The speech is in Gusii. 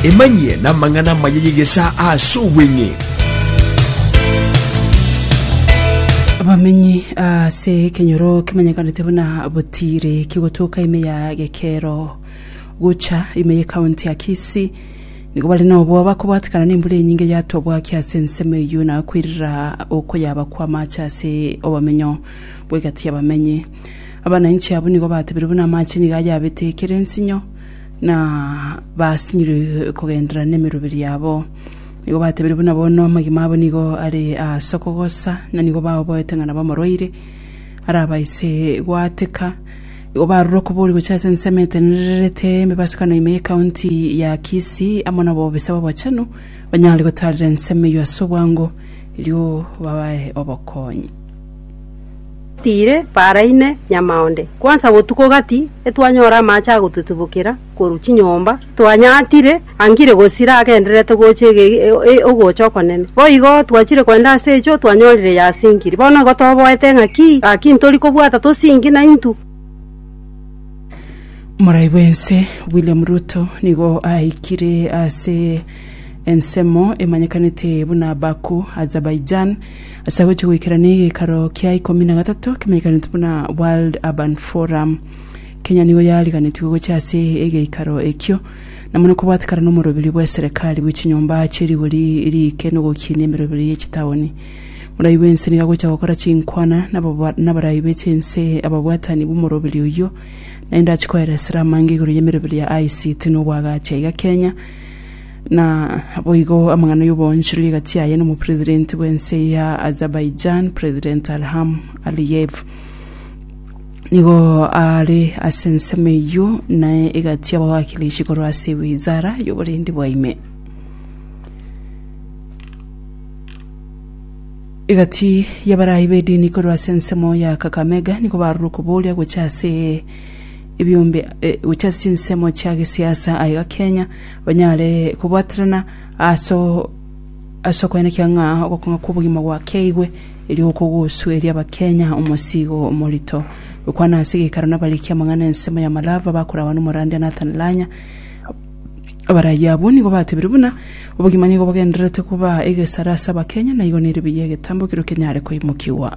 Emanyie namang'ana amaya y'egesaa ase obweng'e. Abamenyi ase ekenyoro kemanyekanete buna Butiri kigotoka ime ya Gekero gocha ime ye county ya Kisii nigo bare nobwoba bakobwatekana nembura enyinge yatwa bwaki ase ensemo eyio na kwerira okoyaba kw'amache ase obamenyo bw'egati y'abamenyi. Abananchi abwo nigo batebire buna amache nigo ayabete ekere nsinyo, na basinyire kogenderera nemeroberi yabo. Nigo batebire buna bono amagima abo nigo are ase okogosa, na nigo baoboete ng'a nabo omorwaire, arabaise goateka. Igo barure okobori gochia ase ensemo etenenererete emebasukano ime ye county ya Kisii amo na obobisa obochenu, banyare gotarera ensemo eyio ase obwango, erio babae obokonyi. Tiire baraine nyamaonde, kwansa botuko gati etwanyora amache agototibokera korwa chinyomba, twanyaatire angire gosira agendererete gocha ogocha okonene. Boigo twachire kogenda ase echo twanyorire yasingiri. Bono igo toboete ng'aki, gaki ntori kobwata tosingi na intu. Morai bw'ense William Ruto nigo aikire ase ensemo emanyekanete buna Baku, Azerbaijan, Ase agochia goikerana egekaro kia ikomi na gatato kemaiganete buna World Urban Forum, Kenya nigo yariganetigwe gochia ase egeikaro ekio, na mono kobwatekana n'omoroberio bw'eserekari bwe chinyomba chie rigori riike nogokinia emeroberio ye chitaoni. Morai bwense nigo agochia gokora chinkwana nabarai be chinse ababwatani b'omoroberio oyio, naende achikoeresera amange igoro y'emeroberio ya ICT nobwagachi aiga Kenya. Na boigo amang'ana y'oboonchoreria egati aye n'omopresidenti bw'ense ya Azerbaijan, President Ilham Aliyev. Nigo are ase ensemo eyio na egati y'abawakilishi korwa ase wizara y'oborendi bwa ime. Egati y'abaraai b'edini korwa ase ensemo ya Kakamega nigo barure okobooria gocha ase ebiombe eh, gocha ase chinsemo chia gesiasa aiga Kenya banyare kobwaterana ase ase okoenekia ng'a ogokong'a kw'obogima gwakeigwe, erio gokogosueria Abakenya omosigo omorito. Gokwana ase geikaro nabarikia amang'ana ensemo ya Malava bakorawa n'omorandia Nathan Lanya, abarayia abwo nigo batebirie buna obogima nigo bogendererete koba egesare ase Abakenya na igo nere buya egetambo ekero kenyare koimokigwa.